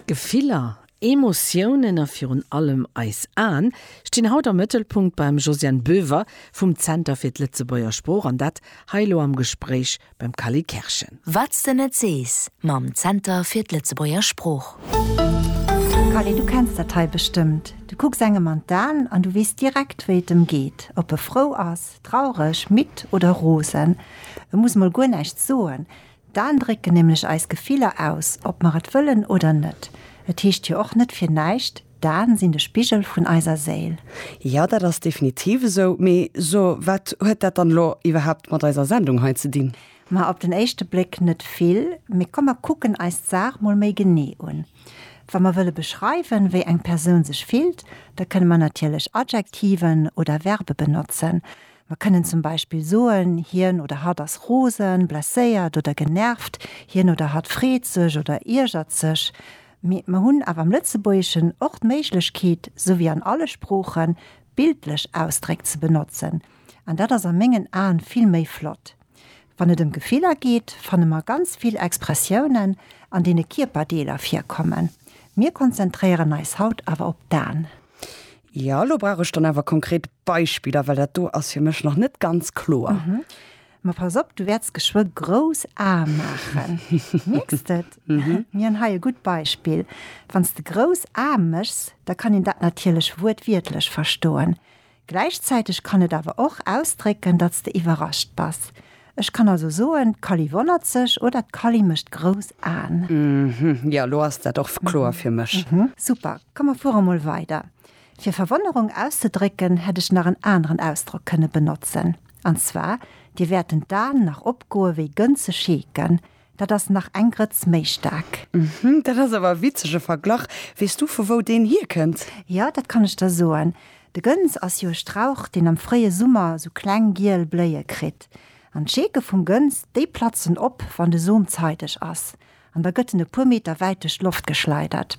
Gefiller, Emotiounen a virun allem eis Aen stinn haut am Mëttelpunkt beim Josiane Boever vum Zenter fir d'Lëtzebuerger Sprooch an dat hei elo am Gespréich beim Cally Kerschen. Wat s de net sees mam Zenter fir d'Lëtzebuerger Sprooch. Cally, du kenns dat hei bestëmmt, du kucks engem an d'Aen an du weess direkt, wéi et em geet, ob e frou ass, traureg, midd oder rosen. E muss mol guer näischt soen, D'Aen drécken nämlech eis Gefiller aus, ob mer et wëllen oder net. Et heescht jo och net fir näischt, D'Aen sinn de Spigel vun eiser Séil. Jo, dat ass definitiv esou. Mee so, wat huet dat dann elo iwwerhaapt mat eiser Sendung hei ze dinn? Ma op den éischte Bléck net vill. Mee komm mer kucken eis d'Saach mol méi genee un. Wa mer wëlle beschreiwen, wéi eng Persoun sech fillt, da kënne mer natierlech Adjektiven oder Verbe benotzen. Mer kënnen zum Beispill soen, Hien oder hatt ass rosen, blesséiert oder genervt. Hien oder hatt freet sech oder iergert sech. Mee mer hunn awer am Lëtzebuergeschen och d'Méiglechkeet, sou wéi an alle Sproochen, bildlech Ausdréck ze benotzen. An dat ass a mengen Aen vill méi flott. Wann et ëm Gefiller geet, fanne mer ganz vill Expressiounen, an deene Kierperdeeler virkommen. Mir konzentréieren eis haut awer op d'Aen. Ja, elo brauch ech dann awer konkret Beispiller, well dat do ass fir mech nach net ganz kloer. Ma pass op, du wäerts geschwë grouss Ae maachen. Mierks de et? Mir hunn hei e gutt Beispill. Wann s de grouss Ae méchs, da kann een dat natierlech wuertwiertlech verstoen. Gläichzäiteg kann et awer och ausdrécken, datt s de iwwerrascht bass. Ech kann also soen, d'Kali wonnert sech oder d'Kali mécht grouss Aen. Hm, jo, elo ass dat och kloer fir mech. Super, komm mer fuere mol weider. Fir Verwonnerung auszedrécken, hätt ech nach en aneren Ausdrock kënne benotzen. An zwar, Dir wäerten d'Aen nach opgoe wéi Gënze scheeken. Dat ass nach eng Grëtz méi staark. Uhmm, dat ass awer e witzege Verglach. Weess du, vu wou deen hierkënnt? Jo, dat kann ech der soen. De Gëns ass jo e Strauch, deen am fréie Summer esou kleng giel Bléie kritt. An d'Scheeke vum Gëns, déi platzen op, wann de Som zeideg ass. An da gëtt en e puer Meter wäit duerch d'Loft geschleidert.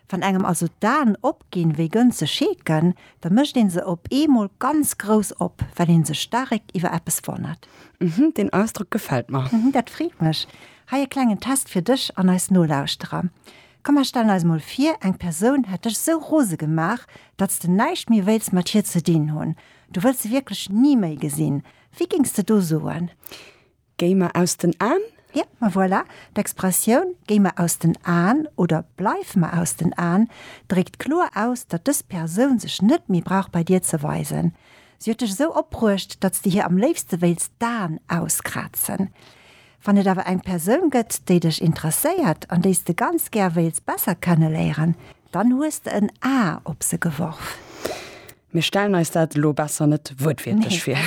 Wann engem also d'Aen opginn, wéi Gënse scheeken, da mécht een se op eemol ganz grouss op, well een sech staarek iwwer eppes wonnert. Mhm, deen Ausdrock gefält mer. Mhm, dat freet mech. Hei e klengen Test fir dech an eis Nolauschterer. Komm, mer stellen eis mol vir, eng Persoun hätt dech sou rose gemaach, datt s de näischt méi wéilts mat hir ze dinn hunn. Du wëlls se wierklech ni méi gesinn. Wéi géings de do soen? Géi mer aus den Aen? Yep, ma voilà, d'Expressioun Géi mer aus den Aen oder Bleif mer aus den Aen dréckt kloer aus, datt dës Persoun sech net méi brauch bei dir ze weisen. Si huet dech esou opbruecht, datt s de hir am léifste wéilts d'Aen auskrazen. Wann et awer eng Persoun gëtt, déi dech interesséiert an déi s de ganz gär wéils besser kenneléieren, Dann hues de en A op se geworf. Mir stellen eis dat elo besser net wuertwiertlech vir.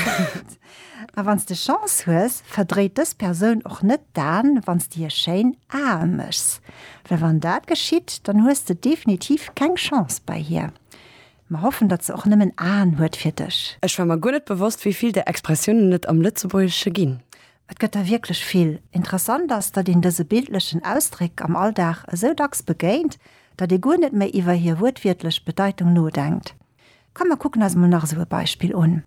A wann s de Chance hues, verdréit dës Persoun och net d'Aen, wann s de hir schéin Ae méchs. Well wann dat geschitt, dann hues de definitiv keng Chance bei hir. Mer hoffen, datt se och nëmmen Aen huet fir dech. Ech war mer guer net bewosst, wéi vill där Expressiounen et am Lëtzebuergesche ginn. Et gëtt der wierklech vill. Interessant ass, datt een dëse bildlechen Ausdréck am Alldag esou dacks begéint, datt ee guer net méi iwwer hir wuertwiertlech Bedeitung nodenkt. Komm mer kucken eis mol nach esou e Beispill un.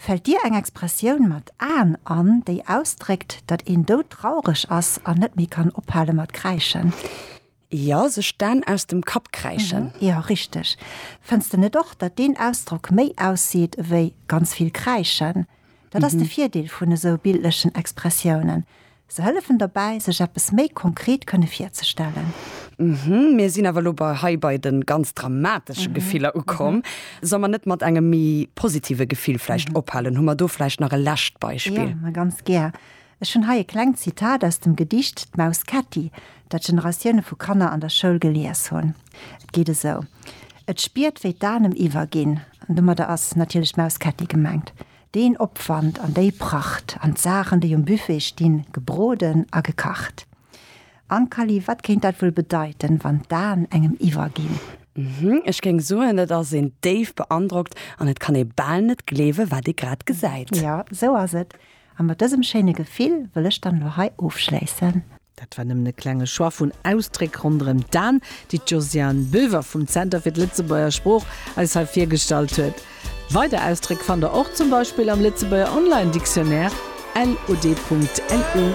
Fält dir eng Expressioun mat Aen an, déi ausdréckt, datt een doudtraureg ass an net méi kann ophale mat kräischen? Jo, sech d'Aan aus dem Kapp kräischen. Mhm, jo, richteg. Fënns de net och, datt deen Ausdrock méi ausseet ewéi ganz vill kräischen? Dat ass de Virdeel vun esou bildlechen Expressiounen, se hëllefen derbäi, sech eppes méi konkret kënne virzestellen. Mhm, mir sinn awer elo bei hei bei de ganz dramatesche Gefiller ukomm. Solle mer net mat engem méi positive Gefill vläicht ophalen? Hu mer do vläicht nach e lescht Beispill? Jo, ma ganz gär. Ech hunn hei e klengt Zitat aus dem Gedicht D'Maus Ketti, dat Generatioune vu Kanner an der Schoul gelies hunn. Et geet esou, Et spiert, wéi d'Anem iwwerginn, an domadder ass natierlech d'Maus Ketti gemengt, deen Opwand an déi Pracht an d'Saachen, déi um Buffet stinn, gebroden a gekacht. Ankali, Wat kéint dat wuel bedeiten, wann d'Aen engem iwwerginn? Hm, ech géing soen, et ass een déif beandrockt an et kann ee bal net gleewe wat ee grad gesäit. Jo, esou ass et. A mat dësem schéine Gefill wëll ech dann elo hei ofschléissen. Dat war nëmmen e klenge Choix vun Ausdréck ronderëm d'An, déi d'Josiane Boever vum Zenter fir d'Lëtzebuerger Sprooch eis hei virgestallt huet. Weider Ausdréck fannt der och zum Beispill am Lëtzebuerger Online-Dictionnaire, lod.lu.